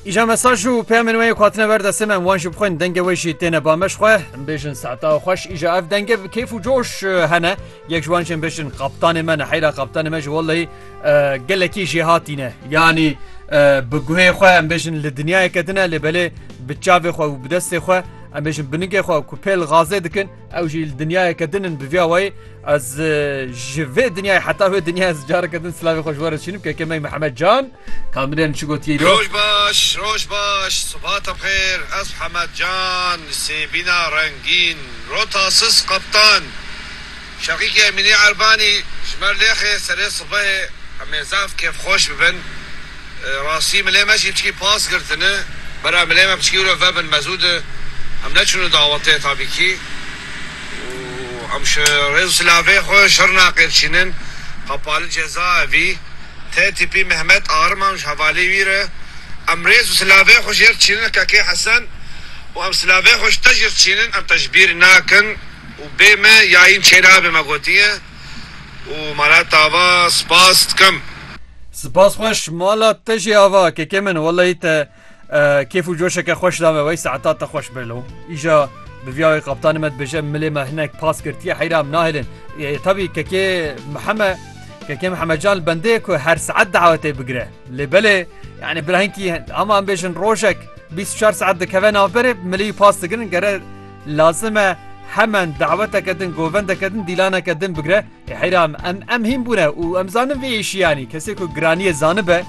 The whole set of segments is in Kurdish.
Îja mesaj û peyamên wê xatine ber destê me wan jî bixwin dengê wê jî têne bameş xwe bêjin seta xweş îja ev dengê bi keyf û coş hene yek ji wan jin bêjin qaptanê me neheyra qaptanê me ji welleyî gelekî jê hatîne yanî bi guhê xwe em bêjin li dinyayeke din e lê belê bi çavê xwe û bi destê xwe em bêjin binigê xwe ku pêl gazê dikin Ew jî li dinyayeke din in bi vîya wayê ez ji vê dinyayê heta wê dinya ez careke din silavê xwe ji we re dişînim keke me Mihemed Can kamirên çi gotiye îro. Roj baş, roj baş, subhata bi xêr, ez Hemed Can, sêbîna rengîn, rota sis qeptan. Şeqîkê Emînî Erbanî ji me lêxê serê sibehê em ê zaf kêfxweş bibin. Rastî milê me jî piçkî pas girtine. Bera milê me piçkî wre vebin mezû de em neçûne dawetê tabîkî û em ji rêz û silavê xwe Şirnexê diçînin. Qapa li cezaevî tê tîpî Mehmet Ariman û ji hevalê wî re em rêz û silavê xwe jêr diçînin Kekê Hesen û em silavê xwe ji te jêr diçînin em te ji bîr nakin û bê me yayîn çêlabê me gotiye. û mala tava spas dikim. Spas xweş mala te jî ava kekê min wellahî te kêf û coşeke xweş dame wey saeta te xweş be lo îja bi vîya wê qaptanê me dibêje milê me hinek pas girtiye heyra em nahêlin tabî kekê miheme kekê mihemecan li bendê ku her saet dawetê bigire lê belê yanî bila hinkî hema em bêjin rojek bîst û çar saet dikeve navberê milî pas digirin gere Lazim e hemen daweteke din, govendeke din, dîlaneke din bigre. Ê heyra em, em em hîn bûne û em zanin vê êşî yanî kesê ku giraniyê zanibe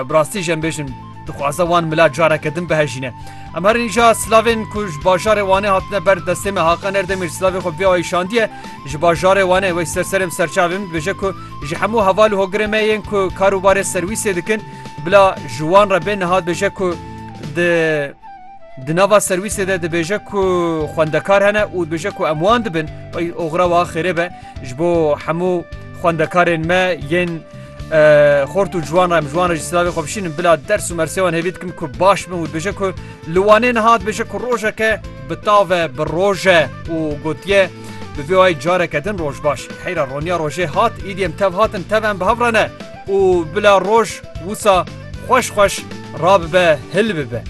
bi rastî jî em bêjin dixwaze wan mila careke din bihejîne. Em her nîja silavên ku ji bajarê Wanê hatine ber destê me Haqan Erdemîr silavê xwe vê ayî şandiye ji bajarê Wanê wey ser serê em serçavê min dibêje ku ji hemû heval û hogirê me yên ku karûbarê serwîsê dikin bila ji wan re bê niha dibêje ku di Di nava serwîsê de dibêje ku xwendekar hene û dibêje ku em wan dibin. Ey oxira wa xêrê be ji bo hemû xwendekarên me yên xort û ciwan re em ji wan re jî silavê xwe bişînin bila ders û mersê wan hêvî dikim ku baş bin û dibêje ku li Wanê niha dibêje ku rojeke bi tav e bi roj e û gotiye bi vê wayî careke din roj baş heyra roniya rojê hat îdî em tev hatin tev em bi hev re ne Û bila roj wisa xweş xweş rabibe hilbibe.